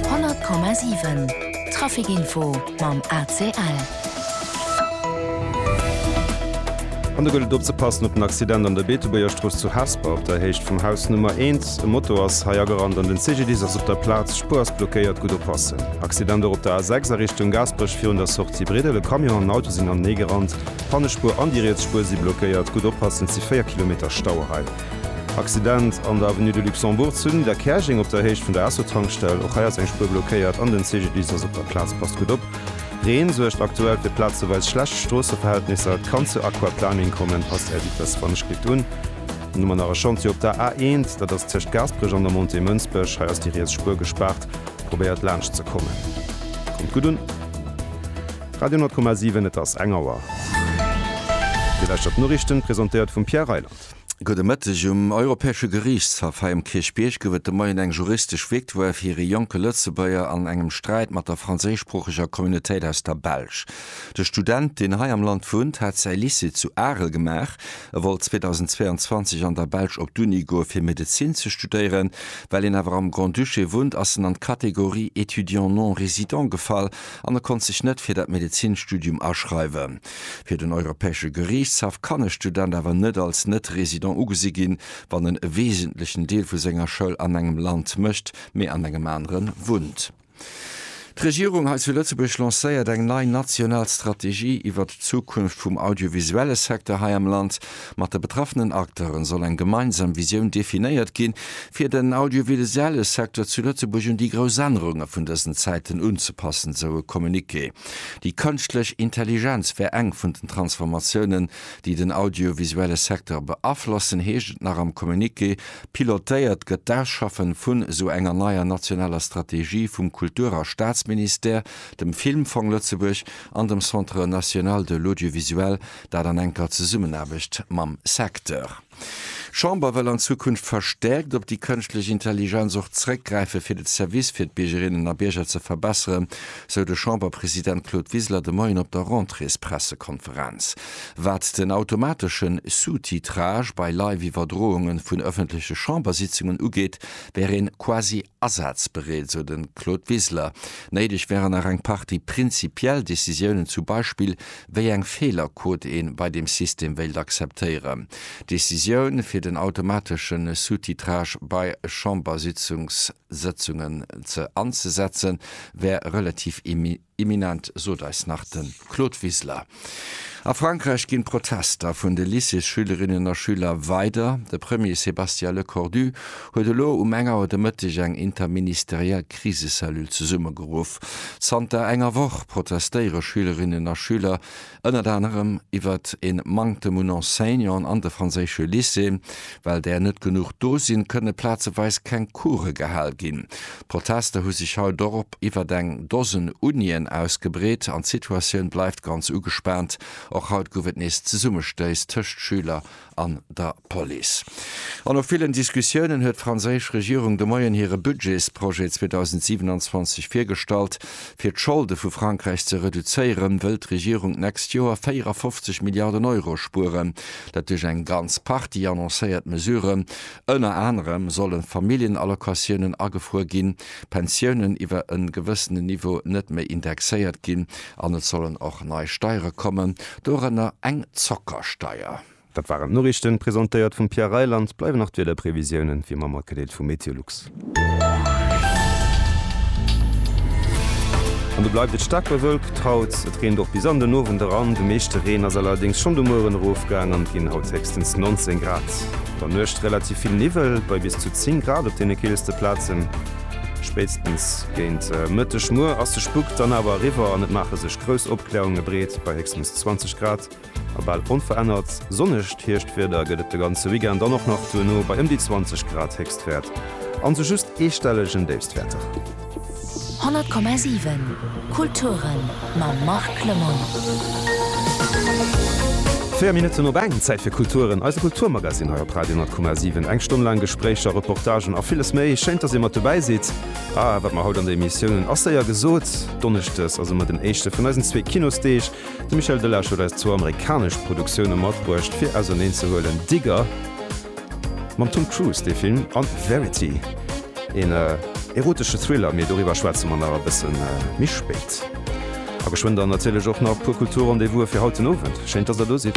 100 Komma 7 Trafikinfo mam ACL. An do gëllt et opzepassen op den Accident an der Beetebuergerstrooss zu Hesper op der Héicht vum Haus Nummer 1. E Moto ass hei agerannt an den CGDIS ass op der Plaz. Spuer ass blockéiert, gutt oppassen. Accident och op der A6 a Richtung Gaasperech virun der Sortie Briddel. E Camion an en Auto sinn haneneegerannt. D'Pannespuer an déi riets Spuer si blockéiert, gutt oppassen, et si 4 Kilometer Stau hei. Accident an der Avenue de Luxembourg zu Nidderkäerjeng op der Héicht vun der Esso-Tankstell. Och hei ass eng Spuer blockéiert an den CGDIS ass op der Plaz. Passt gutt op, Reen suergt aktuell fir plazeweis schlecht Stroosseverhältnisser. Et kann zu Aquaplaning kommen, passt Är Vitess wann ech kritt un. Dann hu mer nach e Chantier op der A1, dat ass tëscht Gaasperech an der Montée Mënsbech. Hei ass déi riets Spuer gespaart, probéiert laanscht ze kommen. Kommt gutt un. Radio 10,7, et ass eng Auer. Dir lauschtert d'Noriichten, presentéiert vum Pierre Reyland. Gudde Mëtteg. Um Europäesche Geriichtshaff hei um Kierchbierg gouf et de Moien eng juristesch Victoire fir ee jonke Lëtzebuerger an engem Sträit mat der franséischsproocheger Communautéit aus der Belsch. De Student, deen hei am Land wunnt, hat säi Lycée zu Arel gemaach. E wollt 2022 an der Belsch op d'Uni goe fir Medezin ze studéieren. Well een awer am Grand-Duché wunnt, ass en an d'Kategorie étudiant non-résident gefall an e konnt sech net fir dat Medezinstudium aschreiwen. Fir den Europäesche Geriichtshaff kann e Student awer net als Net-Resident ugesi ginn, wann en e wesentlechen Deel vu senger Schoul an engem Land mécht, mee an engem anere wunnt. D'Regierung hei zu Lëtzebuerg lancéiert eng nei national Strategie iwwert d'Zukunft vum audiovisuelle Secteur hei am Land. Mat de betraffenen Acteure soll eng gemeinsam Visioun definéiert ginn, fir den audiovisuelle Secteur zu Lëtzebuerg un déi grouss Ännerunge vun dësen Zäiten unzepassen, sou e Communiqué. Déi Kënschtlech Intelligenz wär eng vun den Transformatiounen, déi den audiovisuelle Secteur beaflossen, heescht et nach am Communiqué. Pilotéiert gëtt d'Ausschaffen vun esou enger neier nationaler Strategie vum Kultur a Staatsministère, dem Filmfong Lëtzebuerg an dem Centre national de l'audiovisuel, dat an enker Zesummenaarbecht mam Secteur. D'Chamber wëll an Zukunft verstäerkt op déi kënschtlech Intelligenz och zréckgräifen, fir de Service fir d'Biergerinnen a Bierger ze verbesseren, sou de Chamberpresident Claude Wiseler de Moien op der Rentréespressekonferenz. Wat den automateschen Sous-titrage bei Live-Iwwerdrounge vun ëffentleche Chambersitzungen ugeet, wär een quasi Asazbereet, sou de Claude Wiseler. Néideg wären nach eng Partie prinzipiell Decisiounen, zu Beispill wéi eng Feelerquot ee bei deem System wéilt akzeptéieren. D'Decisioun fir den automatesche Sous-titrage bei Chambersëtzungen anzesetzen, wär relativ imminent. Imminent, sot eis nach de Claude Wiseler. A Frankräich ginn d'Protester vun de Lycéesschülerinnen a schüler weider. De Premier Sébastien Lecornu huet elo um eng Auer de Mëtteg eng interministeriell Krisecellule zesummegeruff. Zanter enger Woch protestéiere Schülerinnen a Schüler ënnert anerem iwwert e Manktem un Enseignanten an de franséische Lycéeën. Well där net genuch do sinn, kënne plazeweis keng Coure gehal ginn. D'Protester hu sech haut och op iwwert eng Dosen Unien ausgebreet an d'Situatioun bleift ganz ugespaant. Och haut gouf et nees Zesummestéiss tëscht Schüler an der Police. An no villen Diskussiounen huet d'franséisch Regierung de Moien hire Budgetsprojet 2027 virgestallt. Fir d'Scholde vu Frankräich ze reduzéieren, wëll d'Regierung d'nächst Joer 54 Milliarden Euro spueren. Dat duerch eng ganz Partie annoncéiert Mesuren. Ënner anerem solle Familljenallocatiounen agefruer ginn, Pensiounen iwwer e gewëssenen Niveau net méi indexéiert ginn An et sollen och nei Steiere kommen, dorënner eng Zockersteier. Dat waren d'Noriichten, presentéiert vum Pierre Reyl. An et bleiwen nach d'Wiederprevisiounen, wéi ëmmer, matgedeelt vu Meteolux. An do bleift et staark bewölkt haut. Et reent och bis an den Owend eran. De meeschte Reen ass allerdéngs schonn de Mueren erofgaang an et ginn haut héchstens 19 Grad. An der Nuecht relativ vill Niwwel bei bis zu 10 Grad op deene keelste Plazen. Spéitstens géint Mëtteg muer ass de Spuck dann awer eriwwer an et maache sech grouss Opkläerunge breet. Bei héchstens 20 Grad a bal onverännert sonnegt Hierschtwieder gëtt et de ganze Weekend an och nach duerno bei ëm déi 20 Grad Héchstwäert an sou just eestellegen Déifstwäerter. 100,7 Kulturen mam Marc Lemoine. Véier Minutten op eng, Zäit fir Kulturen, eise Kulturmagazin hei op Radio 10,7. Eng Stonn laang Gespréicher, Reportagen a villes méi. Schéin, dass Dir mat dobäi sidd. A wat mer haut an der Emissioun hunn, ass séier gesot. Donneschdes ass ëmmer den éischte vun eisen zwee Kinosdeeg. De Michel Delage huet eis zwou amerikanesch Produktioune matbruecht, fir auserneen ze huelen, Digger, Mam Tom Cruise dee Film an Verity, een erotesche Thriller, mee doriwwer schwätze mer nach e bëssen méi spéit. A geschwënn dann natierlech och nach puer Kultur-Rendez-vouse fir haut den Owend. Schéin dass der do sidd.